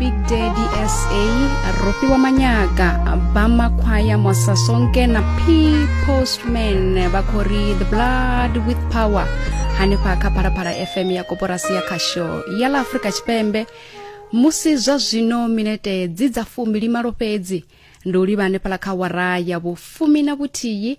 big daddy sa ropi wa manyaga ba makhwaya mosa sonke na p postman vha khou ri the blood with power hanefha kha phalaphala fm ya koporasi ya khasho ya ḽa afrika tshipembe musi zwa zwino minete dzi dza fumbilimalo fhedzi ndi u livha hanefhala kha wara ya vhufumi na vhuthihi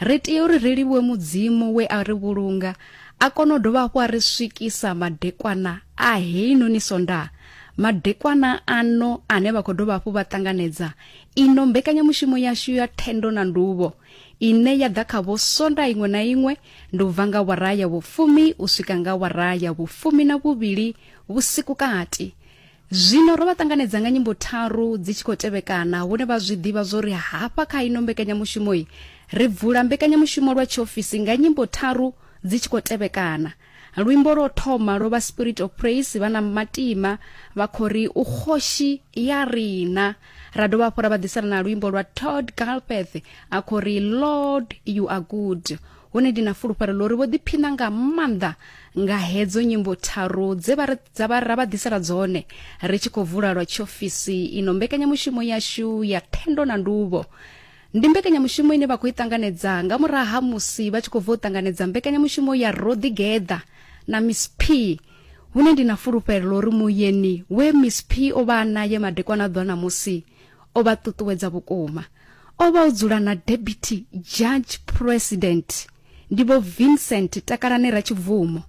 Ri tea uri ri livhuwe Mudzimu we a ri vhulunga, a kona u dovha hafhu a ri swikisa madekwana a heinoni Sondaha. Madekwana ano ane vha khou dovha hafhu vha ṱanganedza ino mbekanyamushumo yashu ya thendo na nduvho ine ya ḓa khavho Sondaha iṅwe na iṅwe ndi u bva nga wara ya vhufumi u swika nga wara ya vhufumi na vhuvhili vhusiku kati. Zwino ro vha ṱanganedza nga nyimbo tharu dzi tshi khou tevhekana hune vha zwi ḓivha zwo ri hafha kha ino mbekanyamushumoi ri bvula mbekanyamushumo lwa tshiofisi nga nyimbo tharu dzi tshi khou tevhekana. Luimbo lwo thoma lwo vha Spirit of Praise vha na matima vha khou ri u khoshi ya rina. Ra dovha hafhu ra vha ḓisela na luimbo lwa Todd Galpeth a khou ri Lord you are good. hone ndi na fulufhelo ḽo ri vho ḓiphina nga maanḓa nga hedzo nyimbo tharu dze vha dza vha ra vha ḓisela dzone ri tshi khou vula lwa tshiofisi ino mbekanyamushumo yashu ya thendo na nduvho ndi mbekanyamushumo ine vha khou i ṱanganedza nga murahu ha musi vha tshi khou bva u ṱanganedza mbekanyamushumo ya roḓigeḓa na miss p hune ndi na fulufhelo ḽo ri muyeni we miss p o vha a naye madekwana ḓwa na musi o vha ṱuṱuwedza vhukuma o vha o dzula na deputy judge president ndi vho vincent takalane ratshibvumo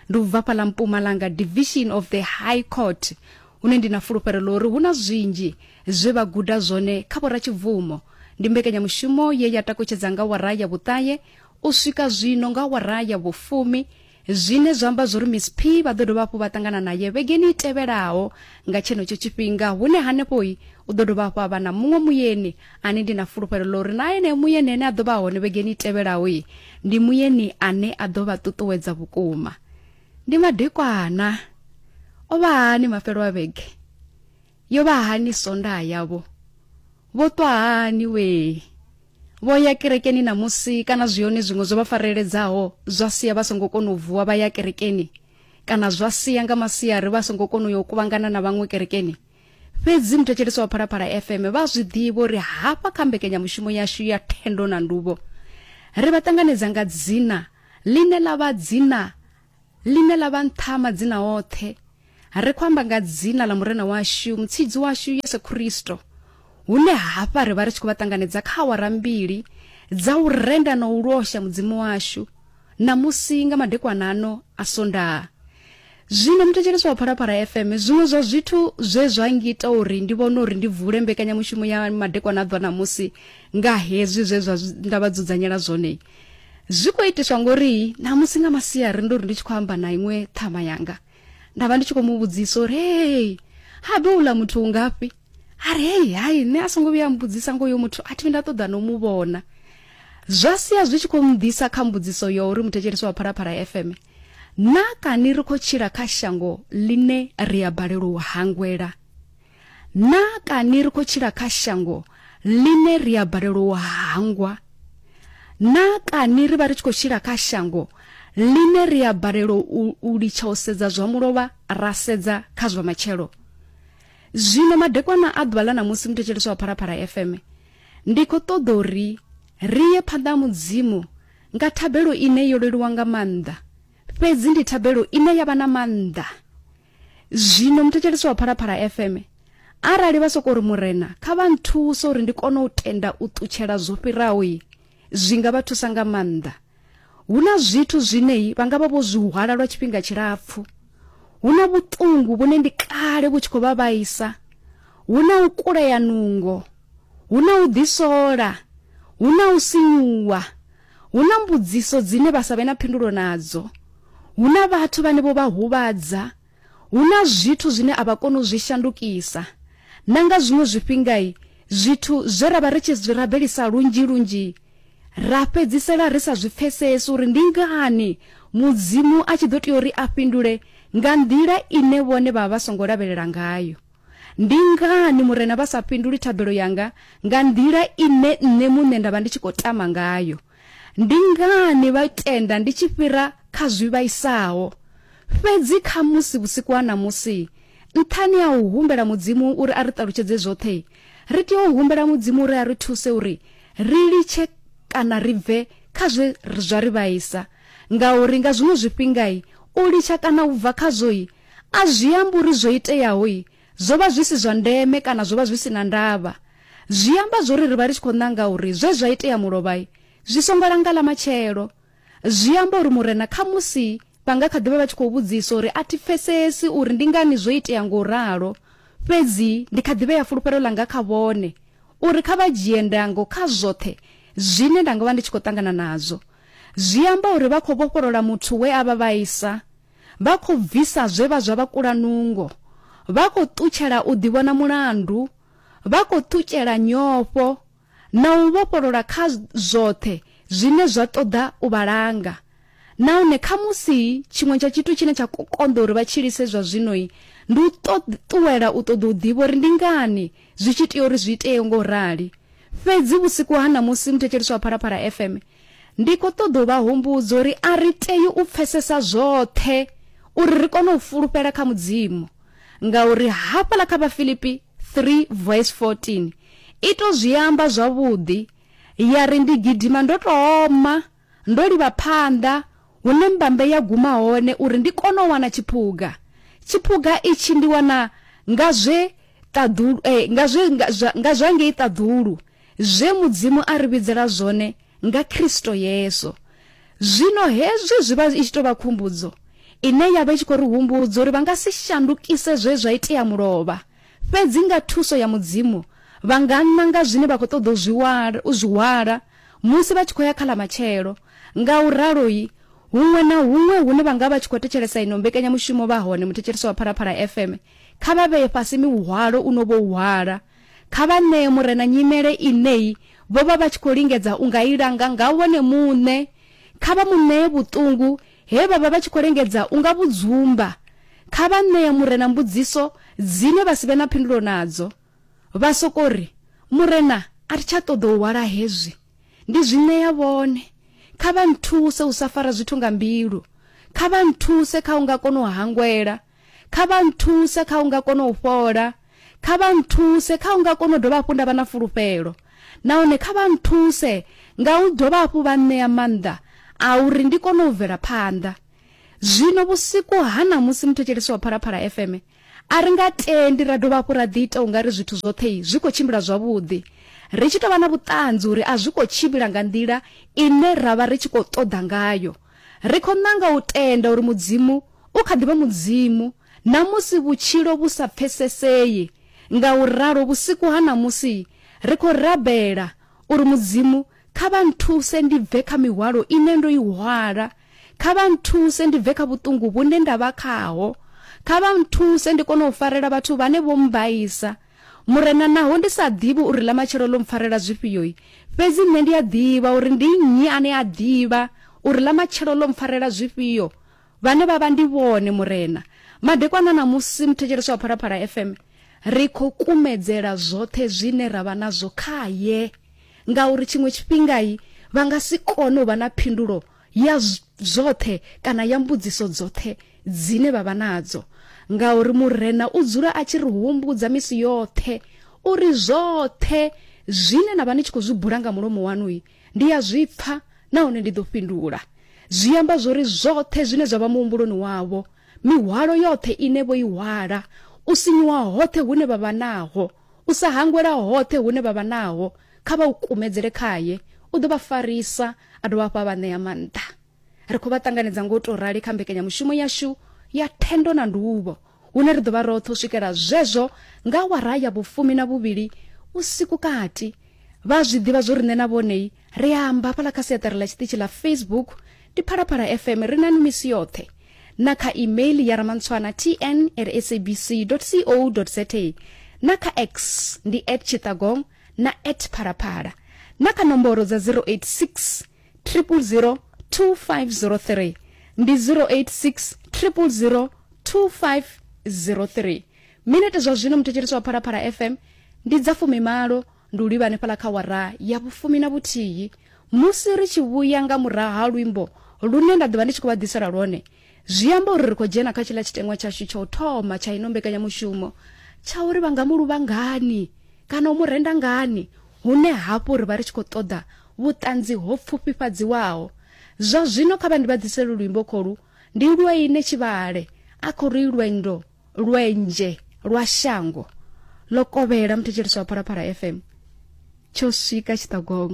ndi u bva fhaḽa mpumalanga division of the high court hune ndi na fulufhelo ḽo uri hu na zwinzhi zwe vha guda zwone kha vhoratshibvumo ndi mbekanyamushumo ye ya takutshedza nga wara ya vhuṱahe u swika zwino nga wara ya vhufumi zwine zwa amba zwo ri miss p vha ḓo dovha hafhu vha ṱangana naye vhegeni i tevhelaho nga tshenetsho tshifhinga hune hanefhoi u ḓo dovha hafhu a vha na muṅwe muyeni ane ndi na fulufhelo ḽa uri na ene muyeni ane a ḓo vha hone vhegeni i tevhelaho i ndi muyeni ane a ḓo vha ṱuṱuwedza vhukuma ndi madekwana o vha hani mafhelo a vhege yo vha hani sonda yavho vho ṱwa hani wee vho ya kerekeni na musi kana zwi hone zwiṅwe zwo vha fareledzaho zwa sia vha songo kona u vuwa vha ya kerekeni kana zwa sia nga masiari vha songo kona u yo kuvhangana na vhaṅwe kerekeni fhedzi muthetshelesi wa phalaphala fm vha zwi ḓivha uri hafha kha mbekenyamushumo yashu ya thendo na nduvho ri vha ṱanganedza nga dzina ḽine ḽa vha dzina Ḽine ḽa vha nṱha ha madzina oṱhe, ri khou amba nga dzina ḽa Murena washu, Mutshidzi washu Yesu Kristo, hune hafha ri vha ri tshi khou vha ṱanganedza kha awara mbili dza u renda na u losha Mudzimu washu ṋamusi nga madekwana ano a Sondaha. Zwino muthetshelesi wa Phalaphala FM, zwiṅwe zwa zwithu zwe zwa ngita uri ndi vhone uri ndi vule mbekanyamushumo ya madekwana a ḓwa ṋamusi nga hezwi zwe zwa nda vha dzudzanyela zwone, zwi khou itiswa ngori namusi nga masiari ndo ri ndi tshi khou amba na iṅwe ṱhama yanga nda vha ndi tshi khou mu vhudzisa uri hei habe uḽa muthu ungafhi a ri hei hai nṋe a songo vhuya a mbudzisa ngo yo muthu a thivi nda ṱoḓa no mu vhona zwa sia zwi tshi khou mḓisa kha mbudziso yo uri muthetshelesi wa phalaphala fm na kani ri khou tshila kha shango ḽine ri a balelwa u hangwela na kani ri khou tshila kha shango ḽine ri a balelwa u hangwa na kani ri vha ri tshi khou tshila kha shango ḽine ri a balelwa u litsha u sedza zwa mulovha ra sedza kha zwa matshelo zwino madekwana a ḓuvha ḽa ṋamusi muthetshelesi wa phalaphala fm ndi khou ṱoḓa uri ri ye phanḓa ha mudzimu nga thabelo ine yo leluwa nga maanḓa Fhedzi ndi thabelo ine ya vha na maanḓa. Zwino, muthetshelesi wa Phalaphala FM, arali vha sokou ri, Murena, kha vha nthuse uri ndi kone u tenda u ṱutshela zwo fhiraho, i, zwi nga vha thusa nga maanḓa. Hu na zwithu zwine i, vha nga vha vho zwi hwala lwa tshifhinga tshilapfu. Hu na vhuṱungu vhune ndi kale vhu tshi khou vha vhaisa. Hu na u kulea nungo. Hu na u ḓisola. Hu na u sinyuwa. Hu na mbudziso dzine vha sa vhe na phindulo nadzo. Hu na vhathu vhane vho vha huvhadza. Hu na zwithu zwine a vha koni u zwi shandukisa. Na nga zwiṅwe zwifhinga, zwithu zwe ra vha ri tshi zwi rabelisa lunzhi-lunzhi, ra fhedzisela ri sa zwi pfesesi uri ndi ngani Mudzimu a tshi ḓo tea uri a fhindule nga nḓila ine vhone vha vha vha songo lavhelela ngayo. Ndi ngani Murena vha sa fhinduli thabelo yanga nga nḓila ine nṋe muṋe nda vha ndi tshi khou tama ngayo? Ndi ngani vha tenda ndi tshi fhira kha zwi vhaisaho? Fhedzi khamusi vhusiku ha ṋamusi, nṱhani ha u humbela Mudzimu uri a ri ṱalutshedze zwoṱhe, ri tea u humbela Mudzimu uri a ri thuse uri ri litshe kana ri bve kha zwe zwa ri vhaisa. Ngauri nga zwiṅwe zwifhinga u litsha kana u bva khazwo A zwi ambi uri zwo iteaho zwo vha zwi si zwa ndeme kana zwo vha zwi si na ndavha. Zwi amba zwa uri ri vha ri tshi khou nanga uri zwe zwa itea mulovha zwi songo langa ḽa matshelo. Zwi amba uri Murena khamusi vha nga kha ḓi vha vha tshi khou vhudzisa uri, A thi pfesesi uri ndi ngani zwo itea nga u ralo, fhedzi ndi kha ḓi vhea fulufhelo ḽanga kha vhone uri kha vha dzhie ndango kha zwoṱhe zwine nda nga vha ndi tshi khou ṱangana nazwo. Zwi amba uri vha khou vhofholola muthu we a vha vhaisa Vha khou bvisa zwe vha zwa vha kula nungo. Vha khou ṱutshela u ḓivhona mulandu. Vha khou ṱutshela nyofho na u vhofholola kha zwoṱhe zwine zwa ṱoḓa u vha langa. Nahone khamusi tshiṅwe tsha tshithu tshine tsha khou konḓa uri vha tshilise zwa zwino ndi u ṱuwela u ṱoḓa u ḓivha uri ndi ngani zwi tshi tea uri zwi itee nga u rali. Fhedzi vhusiku ha ṋamusi, muthetshelesi wa Phalaphala FM Ndi khou ṱoḓa u vha humbudza uri a ri tei u pfesesa zwoṱhe uri ri kone u fulufhela kha Mudzimu, ngauri hafhaḽa kha Vhafilipi 3 vs 14 i tou zwi amba zwavhuḓi ya ri, Ndi gidima ndo tou oma, ndo livha phanḓa hune mbambe ya guma hone uri ndi kone u wana tshiphuga. Tshiphuga itshi ndi wana nga zwe ṱaḓulu, eh, nga zwe, nga zwa, nga zwa ngei ṱaḓulu. zwe Mudzimu a ri vhidzela zwone nga Kristo Yesu. Zwino hezwi zwi vha i tshi tou vha khumbudzo ine ya vha i tshi khou ri humbudza uri vha nga si shandukise zwe zwa itea mulovha, fhedzi nga thuso ya Mudzimu vha nga nanga zwine vha khou ṱoḓa u zwi u zwi hwala musi vha tshi khou ya kha ḽa matshelo. Nga u ralo-i, huṅwe na huṅwe hune vha nga vha tshi khou thetshelesa ino mbekanyamushumo vha hone muthetshelesi wa Phalaphala FM, kha vha vhee fhasi mihwalo u no vhou hwala. Kha vha ṋee Murena nyimele ine vho vha vha tshi khou lingedza u nga i langa nga vhone muṋe. Kha vha mu ṋee vhuṱungu he vha vha vha tshi khou lingedza u nga vhu dzumba. Kha vha ṋee Murena mbudziso dzine vha si vhe na phindulo nadzo. Vha sokou ri, Murena, a ri tsha ṱoḓa u hwala hezwi. Ndi zwi ṋea vhone. Kha vha nthuse u sa fara zwithu nga mbilu. Kha vha nthuse kha u nga kona u hangwela. Kha vha nthuse kha u nga kona u fhola. Kha vha nthuse kha u nga kona u dovha hafhu nda vha na fulufhelo. Nahone kha vha nthuse nga u dovha hafhu vha nṋea maanḓa a uri ndi kone u bvela phanḓa. Zwino vhusiku ha ṋamusi, muthetshelesi wa Phalaphala FM, a ri nga tendi ra dovha hafhu ra ḓiita u nga ri zwithu zwoṱhe zwi khou tshimbila zwavhuḓi, ri tshi tou vha na vhuṱanzi uri a zwi khou tshimbila nga nḓila ine ra vha ri tshi khou ṱoḓa ngayo. Ri khou nanga u tenda uri Mudzimu u kha ḓi vha Mudzimu na musi vhutshilo vhu sa pfesesei. Ngauralo, vhusiku ha ṋamusi ri khou rabela uri, Mudzimu, kha vha nthuse ndi bve kha mihwalo ine ndo i hwala. Kha vha nthuse ndi bve kha vhuṱungu vhune nda vha khaho. Kha vha nthuse ndi kone u farela vhathu vhane vho mmbaisa. Murena, naho ndi sa ḓivhi uri ḽamatshelo ḽo mpfarela zwifhio-i, fhedzi nṋe ndi a ḓivha uri ndi nnyi ane a ḓivha uri ḽamatshelo ḽo mpfarela zwifhio, vhane vha vha ndi vhone, Murena. Madekwana ṋamusi, muthetshelesi wa Phalaphala FM, ri khou kumedzela zwoṱhe zwine ra vha nazwo khae, ngauri tshiṅwe tshifhinga-i vha nga si kone u vha na phindulo ya zwoṱhe kana ya mbudziso dzoṱhe dzine vha vha nadzo ngauri murena u dzula a tshi ri humbudza misi yoṱhe uri zwoṱhe zwine na vha ni tshi khou zwi bula nga mulomo waṋu ndi ya zwi pfa nahone ndi ḓo fhindula zwi amba zwori zwoṱhe zwine zwa vha muhumbuloni wavho mihwalo yoṱhe ine vho i hwala u sinyuwa hoṱhe hune vha vha naho u sa hangwela hoṱhe hune vha vha naho Kha vha u kumedzele khae, u ḓo vha farisa a dovha hafhu a vha ṋea maanḓa. Ri khou vha ṱanganedza nga u tou rali kha mbekanyamushumo yashu ya thendo na nduvho, hune ri ḓo vha roṱhe u swikela zwezwo nga awara ya vhufumi na vhuvhili vhusiku kati. Vha a zwi ḓivha zwo ri nṋe na vhonei ri a amba hafhaḽa kha siaṱari ḽa tshiṱitshi ḽa Facebook, ndi Phalaphala FM, ri nanu misi yoṱhe, na kha email ya Ramantshwana TN at sabc.co.za, na kha X ndi at Chittagong na at phalaphala na kha nomboro dza 086 000 2503 ndi 086 000 2503 minete zwa zwino muthetshelesi wa phalaphala fm ndi dza fumimalo ndi u livha hanefhala kha wara ya vhufumi na vhuthihi musi ri tshi vhuya nga murahu ha luimbo lune nda ḓovha ndi tshi khou vha ḓisela lwone Zwi amba uri ri khou dzhena kha tshiḽa tshiteṅwa tshashu tsha u thoma tsha ino mbekanyamushumo tsha uri vha nga mu luvha ngani kana u mu renda ngani, hune hafhu ri vha ri tshi khou ṱoḓa vhuṱanzi ho pfufhifhadziwaho. Zwa zwino kha vha ndi vha ḓisele luimbo kholu, Ndi lwe ine tshivhale, a khou ri lwendo lwenzhe lwa shango ḽo kovhela muthetshelesi wa Phalaphala FM tsho swika tshiṱogong.